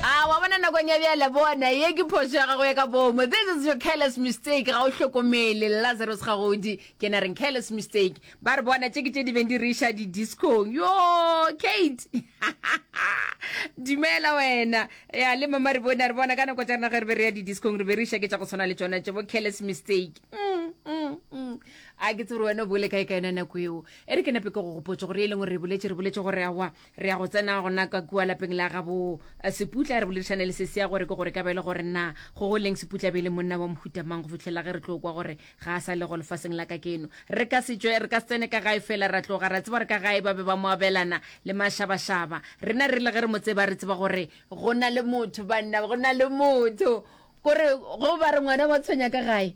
a wa bona nakong ya bjale bona ye ke phoso ya gago ya ka bomo this is your careless mistake ga o hlokomele lazarus gagodi ke na reng careless mistake ba re bona tše ke tše di beng di reša di-discong yo kate dumela wena ya le mama re bone re bona ka nako tša rena ge re be re ya di-discong re be re iša ke tša go tshwana le tšona tše bo careless mistake mm, mm, mm. a ke tsere wena o bole kae ka yona nako eo e re ke nape ke go gopotse gore e leng gore re boletse re boletse gore awa re ya go tsena gona ka kua lapeng la gabo eh, seputla re boledišane le sesea gore ke gore ka bele gore na go go leng seputla be e le monna wa mohuta mang go fitlhela ge re tlo kwa gore ga a sa le go lefaseng la ka keno re ka setswe re ka se tsene ka gae fela ra tloga ra tseba re ka gae ba be ba mo abelana le mašabašaba rena re le ge re mo tseba re tseba gore go na le motho banna go na le motho kore go ba re ngwana wa tshwenya ka gae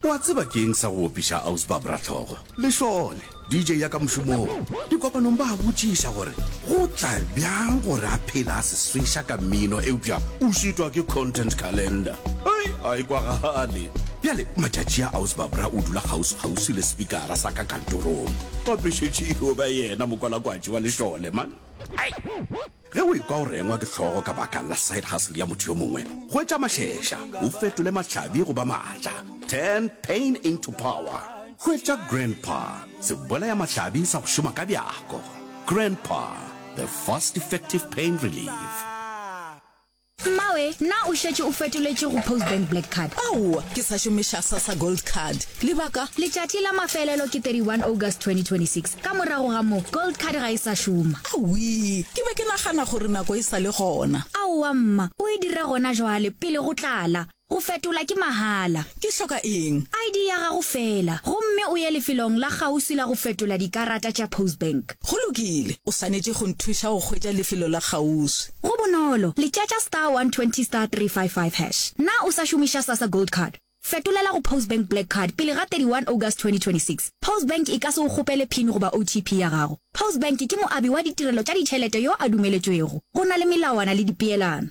O a tseba ke eng sa go opiša Aus Bab Ratlhogo? Lešole, DJ ya ka mošomong, dikopanong ba a botšiša gore go tla bjang gore a phele a se swiša ka mmino eupša o šitwa ke content calendar. Hei, a e kwagale. Bjale matšatši a Aus Bab Ra o dula kgauswi-kgauswi le sepikara sa ka kantorong. Ba phešetše e tlo ba yena mokwalakwatši wa lešole, man. Hei! Ge o ekwa o rengwa ke hlogo ka baka la side hustle ya motho yo mongwe, hwetša mašeša o fetole mahlabi go ba maatla. Turn pain into power. Hwetša Grandpa, sebolaya mahlabi sa go šoma ka bjako. Grandpa, the fast effective pain relief. Mmawe, na o šetše o fetoletše go Postbank Black Card? Aowa, ke sa šomiša Sassa Gold Card. Lebaka? Letšatši la mafelelo ke 31 August 2026. Ka morago ga moo, Gold Card ga e sa šoma. Awii, ke be ke nagana gore nako e sa le gona. Aowa mma, o e dira gona jwale, pele go tlala. Go fetola ke mahala. Ke hloka eng? ID ya gago feela, gomme o ye lefelong la kgauswi la go fetola dikarata tša Postbank. Go lokile. O swanetše go nthuša go hwetša lefelo la kgauswi. Go bonolo, le tšatša star 120 star 355 hash. Na o sa šomiša Sasa Gold Card? Fetolela go Postbank Black Card pele ga 31 August 2026. Postbank e ka se go kgopele pin goba OTP ya gago. Postbank ke moabi wa ditirelo tša ditšhelete yo a dumeletšwego. Go na le melawana le dipeelano.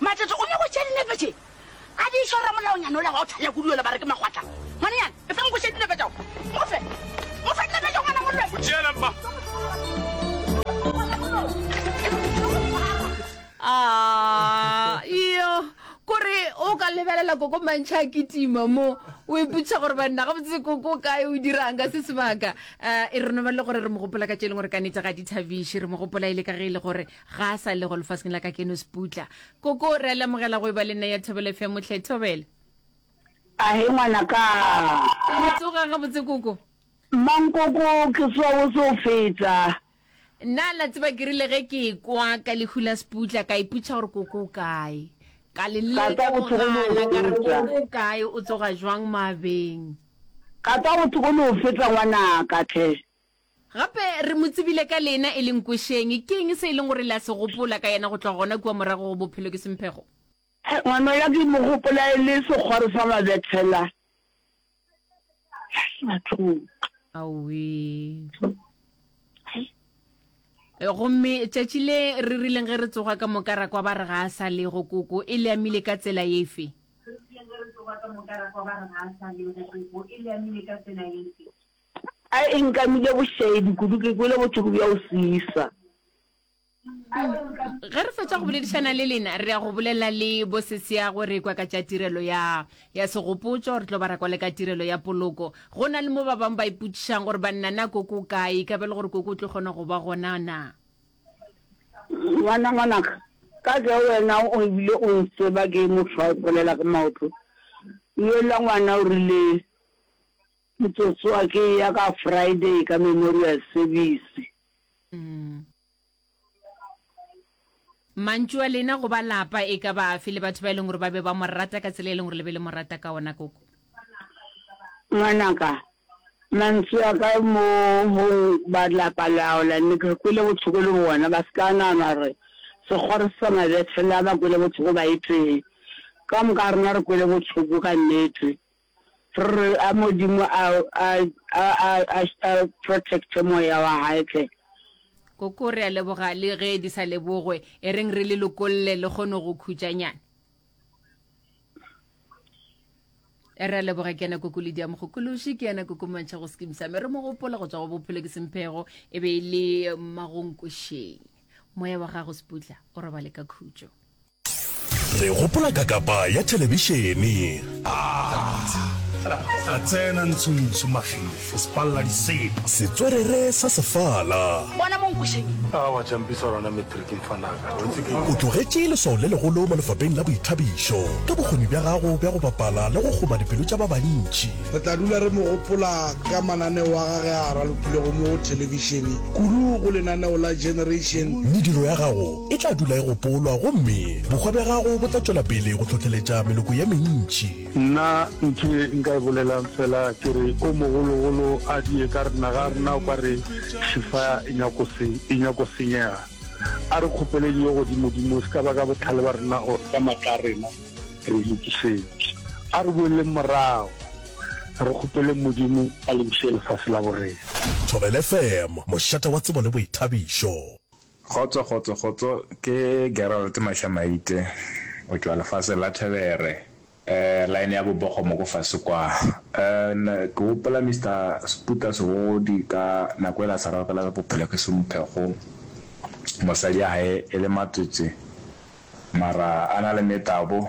Matete o nyako tšea dinepe tše a di išwa ramolaonyana o la wa o tlhalea kudu yola ba re ke magwatla ngwanenyana e feng go tšea dinepe tšao mofe mofe dinepe tšao ngwana mollo o tšeela mma Ah, iyo kore o ka lebelela koko mantšha a kitima mo o ipotšiša gore banna ga botse koko kae o dirang ka se sebaka um e re noba le gore re mo gopola ka tše e leng gore ka nete ga di thabiše re mo gopola e le ka ge e le gore ga a sa le go lefaseng la ka keno seputla koko re a lemogela go eba le nna ya thobelo fm motlhe thobela a he ngwana ka o tsoga ga botse koko mankoko ke soa o se o fetsa nna la tseba ke rile ge ke kwa ka lehu la seputla ka iputša gore koko o kae ka le le ka bogala ka re koko o kae o tsoga jwang mabeng ka tsa go tsoko le o fetsa ngwanaka tlhe Gape re mo tsebile ka leena e leng Kwešeng. Ke eng se e leng gore le a se gopola ka yena go tloga gona kua morago go Bophelo ke Semphego? Ngwana ka ke mo gopola e le sekgwari sa mabethela a mathong. Awee. Gomme tšatši le re rileng ge re tsoga ka moka ra kwa ba re ga a sa lego, koko e leamile ka tsela efe? Re rileng ge re tsoga ka moka ra kwa ba re ga a sa lego, koko e leamile ka tsela efe? A e nkamile bošaedi kudu, ke kwele bothoko bja go sisa. Ge re fetša go boledišana le lena, re ya go bolela le boseseago re kwa ka tša tirelo ya ya segopotšo, re tlo ba ra kwa le ka tirelo ya poloko. Go na le mo ba bangwe ba ipotšišang gore ba nna na koko o kae, e ka ba e le gore koko o tlo kgona go ba gona na. Ngwana ngwanaka, ka ge wena o bile o ntseba ke motho wa go bolela ka maotlo, Llella ngwana o rile. Ke tlo tsoa ke eya ka Friday ka Memorial Service. Mantšu a lena go ba lapa e ka ba afe le batho ba e leng gore ba be ba mo rata ka tsela e leng gore le be le mo rata ka ona, Koko? Ngwanaka, mantšu a ka mo go ba lapa lao la ne ke kwele bothoko le bona. Ba se ka nagana gore sekgoro sa mabethe la ba kwele bothoko ba e tee. Ka moka rena re kwele bothoko ka nnete. Rre a Modimo a a a a a a protecte moya wa hae tle. Koko re a leboga le ge di sa lebogwe, e reng re le lokolle le kgone go khutša nyana. Re a leboga ke yana Koko Lydia Mokgokološi, ke yana Koko Mantšha go scheme sa me, re mo gopola go tswa go Bophelo ke Semphego, e be e le Mmagonkošeng. Moya wa gago Sputla o robale ka khutšo. Re gopola kakapa ya thelebišene. A tsena ntshuntshu makgefe sepalla disepa. Setswerere sa sefala. Bona mo nkwešišeng. A wa tšampisa rona matric mfanaka. O tlogetše leswao le legolo mo lefapeng la boithabišo ka bokgoni bja gago bja go bapala le go kgoma dipelo tša ba bantši. Re tla dula re mo gopola ka mananeo a gage a a ralokilego mo thelebišene, kudu go lenaneo la Generation. Mediro ya gago e tla dula e gopolwa gomme bohwa bja gago bo tla tšwela pele go hlohleletša meloko ye mentši. Nna ntho ye nka e bolelang fela ke re o mogologolo a die ka rena ga rena o ka re šifa e nyako se e nyako senyega a re kgopeleng yo godimodimo se ka ba ka botlhale ba rena or ka matla a rena re lokišetše a re boeleng morago re kgopeleng modimo a lokiše lefase la borena. Thobel FM, mošate wa tsebo le boithabišo. Kgotso kgotso kgotso ke Gerald Mashamaite go tšwa lefaseng la Thebere line ya Bobogo mo ko fase kwa. Ke gopola Mister Sputa Segodi ka nako e la sa re rapela ka Bophelo ke Semphego mosadi ya gae e le Matswetse mara a na le metabo.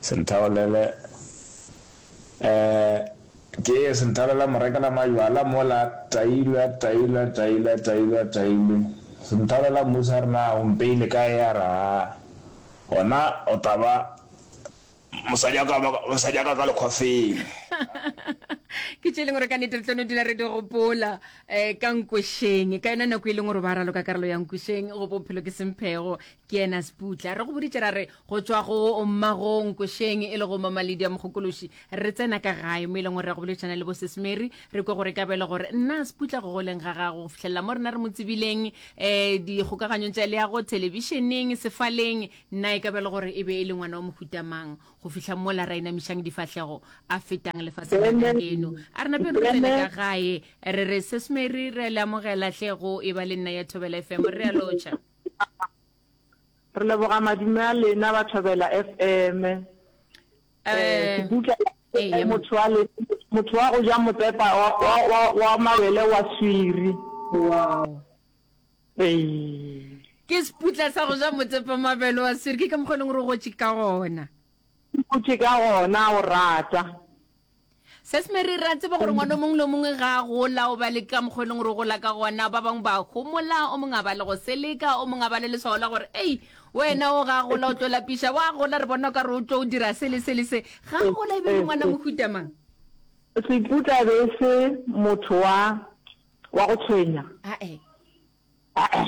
Senthaolele, Ee, ke Senthaolele morekela majwala mola a tailwe, a tailwe, a tailwe, a tailwe, a tailwe. Senthaolele a mmusa a re, Na o mpeile kae? A re, Aa, gona o tla ba mosadi wa ka, mosadi wa ka ka lekhwafeng. Ke tše e leng gore ka nnete re tla no dula re di gopola ka Nkwešeng, ka yona nako e leng gore ba raloka karolo ya Nkwešeng go Bophelo ke Semphego. Ke yena Sputla. Re go boditše ra re, go tšwa go Mmagong, košeng, e lego mamaledi a mokgokološi, re tsena ka gae, mo e leng gore ra go boledišana le bo-Sis Mary, re kwe gore e ka ba e le gore na Sputla go goleng ga gago go fihlelela mo rena re mo tsebileng, um dikgokaganyong tša leago, thelebišeneng, sefaleng, na e ka ba e le gore e be e le ngwana wa mohuta mang, go fihla mola ra inamišang difahlego a fetang lefaseng la nakeno. A re napeng re tsene ka gae. Re re, Sis Mary, re a le amogela hle go e ba le nna ya Thobela FM. Re a lotšha. Re leboga madume a lena ba Thobela FM. Eh, ke butla Ee. motho wa le motho wa go ja mopepa wa wa wa, wa mabele wa swiri. Wow. Ee. ke seputla sa go ja motsepa mabelo wa swiri ke ka mokgwa e leng gore o gotše ka gona Gotše ka gona o rata. Sesme re ra tseba gore ngwana o mongwe le o mongwe ga a gola o ba le ka mokgwa e leng gore o gola ka gona ba bangwe ba homola o mongwe a ba le go seleka o mongwe a ba le leswao la gore ei wena o ga a gola o tlo lapiša wa gola re bona o ka re o tlo o dira se le se le se ga a gola e be le ngwana mohutamang seputla be se motho wa wa go tshwenya ae ae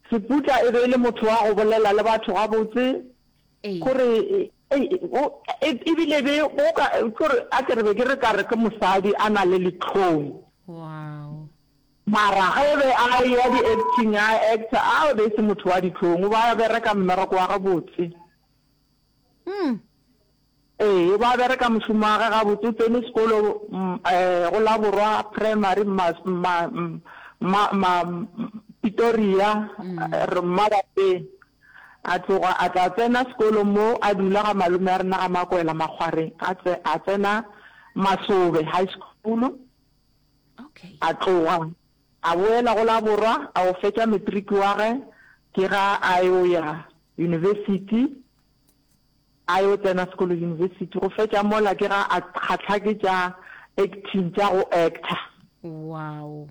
Seputla e be e le motho wa go bolela le batho gabotse, gore e bile be o ka gore a ke re be ke re ka re ke mosadi a na le letlhong. Wow. Mara ge be a ya di acting a actor a o be se motho wa ditlhong o ba bereka mmereko wa gabotse. Mm. Ee, o be a bereka mošomo wa gagwe gabotse. O tsene sekolo go la Borwa Primary, Pretoria, Mmabapeng. A tloga a tla tsena sekolo mo a dula ga malome a rena ga Makwela Makgwareng. A tse a tsena Masobe High School. A tloga a boela go la Borwa a go fetša matric wa ge ke ga a yo ya university. A yo tsena sekolo yunibesithi. Go fetša mola ke ga a kgahla ke tša acting, tša go actor. Wow!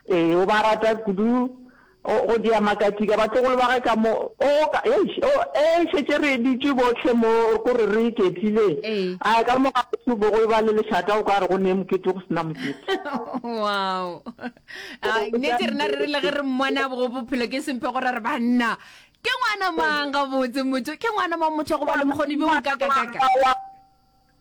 Ee, o ba rata kudu. O, go dira makatika. Batlogolo ba ge ka mo, o ka, eish, o, e šetše re bitšwe bohle mo, ko re re iketlile. Ee. A ka mo ga boso bo go eba le lešata o ka re go ne mokete go se na mokete. Wow! A, nnete rena re rile ge re mmona go bophelo ke semphe go ra re banna. Ke ngwana mang gabotse motho? Ke ngwana wa motho goba le bokgoni bjo bokakakaka?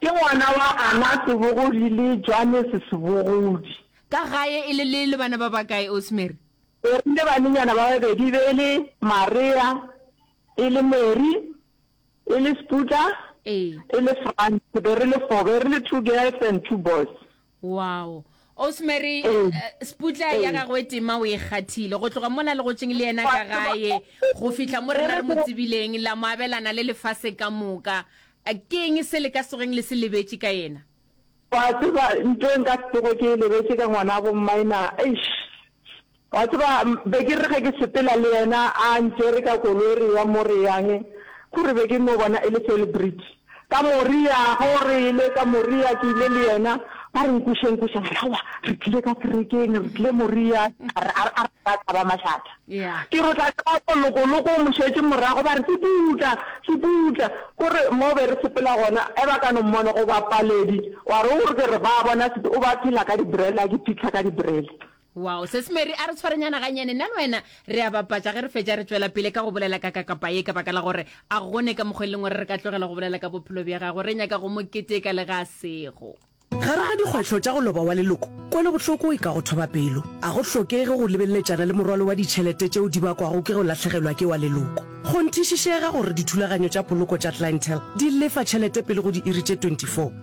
Ke ngwana wa Ana Sebogodi le Johanese Sebogodi. Ka gae e le le le bana ba bakae Osmeri? O rile banenyana ba babedi be e le Marea, e le Mary, e le Spudler, e le Franz. Be re le four, be re le two girls and two boys. Wow. Osemary, uh, sputla ya gagwe e tema o e kgathile go tloga mona le gotseng le yena ka gae go fihla mo rena re mo tsibileng la mo abelana le lefase ka moka Eh, ke eng se le ka segeng le se lebetše ka yena wa tseba nto e nka se tlogo ke e lebetše ka ngwana bo mmaena eish Wa tseba, be ke re ge ke sepela le yena, a ntšere ka koloi re ewa mo re yang, k'ore be ke no bona e le celebrity. Ka mo re ya, ge o re ile ka mo re ya, ke ile le yena, ba re nkweše-nkweše, ba re, Aowa, re tlile ka kerekeng, re tlile mo re ya, a re, a re, a re tla tšhaba mašata. Ke re o tla tšhaba kolokolo, o mo šetše morago, ba re, Seputla! Seputla! K'ore mo be re sepela gona, ge ba ka no mmona go bapaledi, wa re o gore ke re ba bona, o ba phela ka dibrele, a ke phitlha ka dibrele. Wow ses Mary a re tshwarenyana ganyane nna le wena re a bapatša ge re fetša re tšwela pele ka go bolela ka kakapa ye ka baka la gore a gone ka mokgweng lengwe re re ka tlogela go bolela ka bophelo bja gagwe re nyaka go mo keteka le ga a sego. Gare ga dikgwetlho tša go loba wa leloko, kwelobohloko e ka go thoba pelo. A go hlokege go lebeleletšana le morwalo wa ditšhelete tšeo di bakwago ke go lahlegelwa ke wa leloko. Go nthišišega gore dithulaganyo tša poloko tša Clientele di lefa tšhelete pele go diiri tše 24.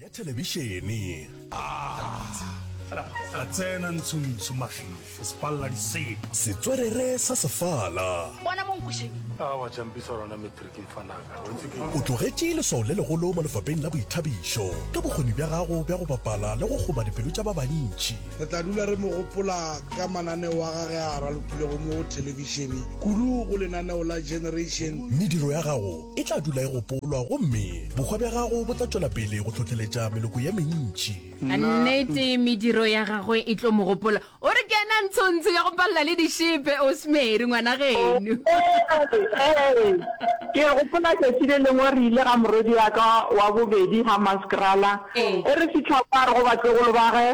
ya thelebišene a a tsena ntshontso mafifi sepalla disepa setswerere sa sefala bona mo nkwišeng a wa tšampisa rona matric mfanaka o tlogetše leswao le legolo mo lefapeng la boithabišo ka bokgoni bja gago bja go bapala le go kgoba dipelo tša ba bantši re tla dula re mo gopola ka mananeo wa gage a ralokilego mo thelebišene kudu go lenaneo la generation mediro ya gago e tla dula e gopolwa gomme bohwa bja gago bo tla tšwela pele go tlhohleletša meloko ye mentši. Nnete, mediro ya gagwe e tlo mo gopola. O re ke yena ntshontsho ya go palela le dišepe, Osmeri ngwana geno. Ee, ke a gopola tšatši le lengwe re ile ga morwedi wa ka wa bobedi Hammanskraal, e re fihla mo a re go batlogolo ba ge,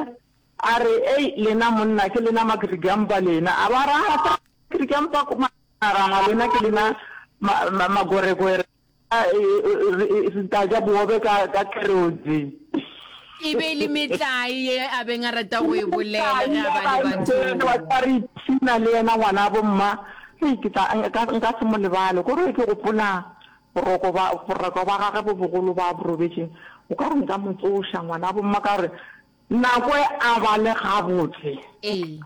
a re, Ei, lena monna, ke lena Makriki a mpa lena. A ba ra, Ga se ra Makriki a mpa, Ranga lena ke lena magweregwere a re tla ja bogobe ka kerotse. E be e le metlae ye a beng a rata go e bolela ge a ba le bathong. Wa tseba re ipshina le yena ngwanabo mma, nka se mo lebale. Ko re ke gopola boroko ba gage bo bogolo ba a bo robetšeng, o ka re nka mo tsoša ngwanabo mma ka gore nako e a bale gabotse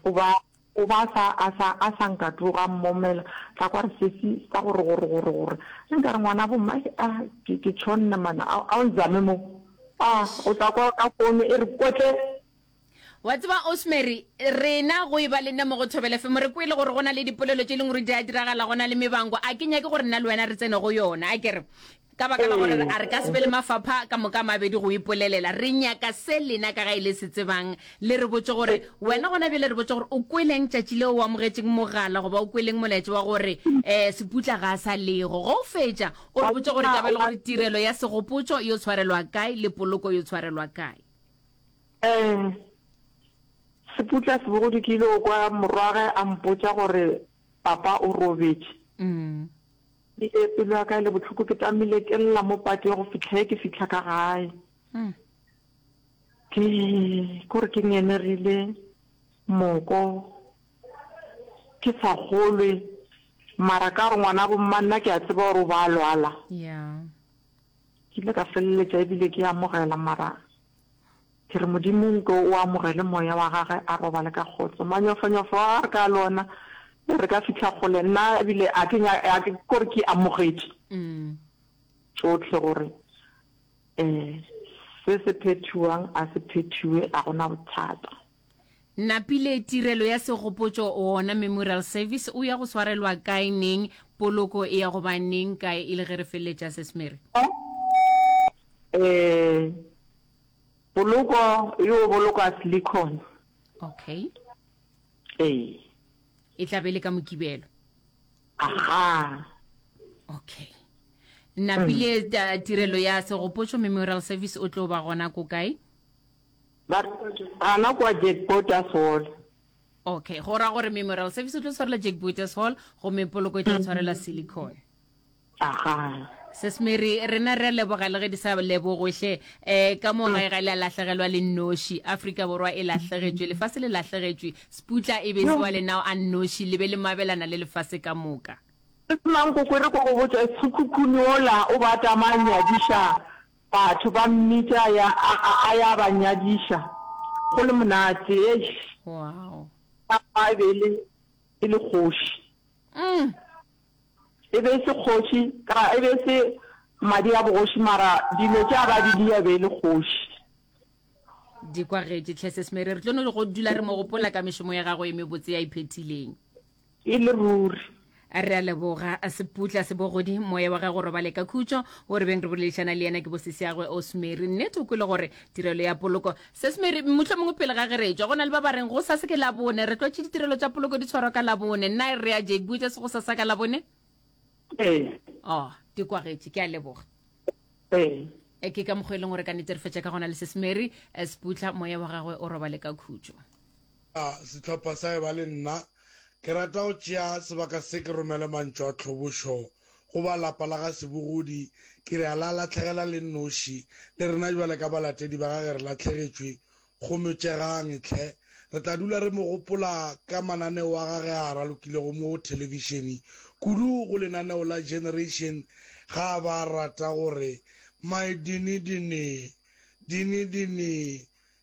goba. O ba a sa, a sa, a sa nka tloga a mmomela, tla kwa re sesi sa gore, gore, gore, gore. Ge nka re, Ngwanabo, mma, ke, a, ke, ke tšhonne, mana, a, a o nzame mo. A, o tla kwa ka founu e re kwetle. Wa tseba, Osmery, rena go eba le nemogo thobelefe, mo re kwele gore go na le dipolelo tše e leng gore di a diragala, go na le mebango. A ke nyake gore nna le wena re tsene go yona, akere? Ka baka la gore a re ka se be le mafapha ka moka a mabedi go ipolelela, re nyaka se lena ka ga e le se tsebang le re botše gore, wena gona bjale re botše gore o kweleng tšatši leo o amogetšeng mogala goba o kweleng molaetša wa gore um Seputla ga a sa lego. Ge o fetša, o re botše gore taba e le gore tirelo ya Segopotšo yo tshwarelwa kae le poloko yo tshwarelwa kae. Um Seputla se bogodi ke ile go kwa morwage a mpotša gore Papa o robetše. Um Ee, pelo ya ka e le bohloko, ke tamile ke lla mo pake go fihla ye ke fihla ka gae. Mm. Ke kore ke ngenegile moko ke sa golwe mara ka gore ngwana bo mmanna ke a tseba gore o ba lwala. Yeah. Ke ile ka feleletša ebile ke amogela mara Ke re Modimo nko o amogele moya wa gage a robale ka kgotso. Manyofonyofo a re ka le ona re ka fihla kgole. Nna ebile a ke a ke gore ke amogetše mm. tšohle gore eh se se phethiwang a se phethiwe a gona bothata. Napile tirelo ya segopotšo wona memorial service o ya go swarelwa kae neng poloko e ya go ba neng kae e le ge re feleletša sesmere? Eh Poloko e yo bolokwa silicon. Okay. Ee. E tla be le ka mokibelo. Aha. Okay. Napile mm. ta tirelo ya segopotso memorial service o tlo ba gona ko kae? Ba ana kwa Jackpot as hall. Okay, go ra gore memorial service o tlo tshwarela Jackpot as hall go mepoloko e tla mm. tshwarela silicon. Ahaa. Sis Mary, rena re a leboga le ge di sa lebogo hle. Eh, ka mo gae ga le a lahlegelwa le nnoši. Afrika Borwa e lahlegetšwe, lefase le lahlegetšwe. Sputla e be se wa lenao a nnoši, le be le mabelana le lefase ka moka. Sephelang go kwere ko go botša sekhukhuni ola o ba tama a nyadiša batho ba mmitša a ya a a a ya ba nyadiša go le monate eish Wow. ka bible e le kgoši. Umm. E be e se kgoši, ka e be e se madi a bogoši, mara dilo tša ba di lia be e le kgoši. Di kwagetše, tlhe Sis Mary. Re tlo no go dula re mo gopola ka mešomo ya gago e mebotse ya e phethileng. E le ruri. Re a leboga, Seputla se bogodi, moya wa gago o robale ka khutšo. O re beng re boledišana le yena ke bo Sisiagwe Osmeri. Nnete o kwele gore tirelo ya poloko Sesmere, Mohlomongwe pele ga ge re tšwa, go na le ba ba reng, Go sa se ke Labone. Re tlwaetše ditirelo tša poloko di tshwarwa ka Labone. Nna e rea Jake, botša se go sa sa ka Labone. Ee. Oh, ke kwagetše. Ke a leboga. Ee. E, ke ka mokgwa e leng gore ka nete re fetša ka gona le Sesmere. E, Sputla, moya wa gagwe o robale ka khutšo. A, sehlopha sa eba le nna. Ke rata go tšea sebaka se ke romele mantšu a tlhobošo go Go ba lapa la ga Sebogodi, ke re a la latlhegela le nnoši, le rena bjale ka balatedi ba gage re latlhegetšwe. Go metšegang hle. Re tla dula re mo gopola ka mananeo a gage a a ralokilego mo go thelebišene, kudu go lenaneo la Generation ga a ba a rata go re, My Dinidini, Dinidini,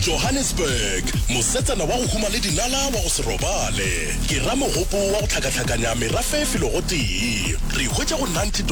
johannesburg mosetsana wa go huma le dinala wa go se robale ke ramogopo wa go tlhakatlhakanya merafe felo gotee re hwetša go 90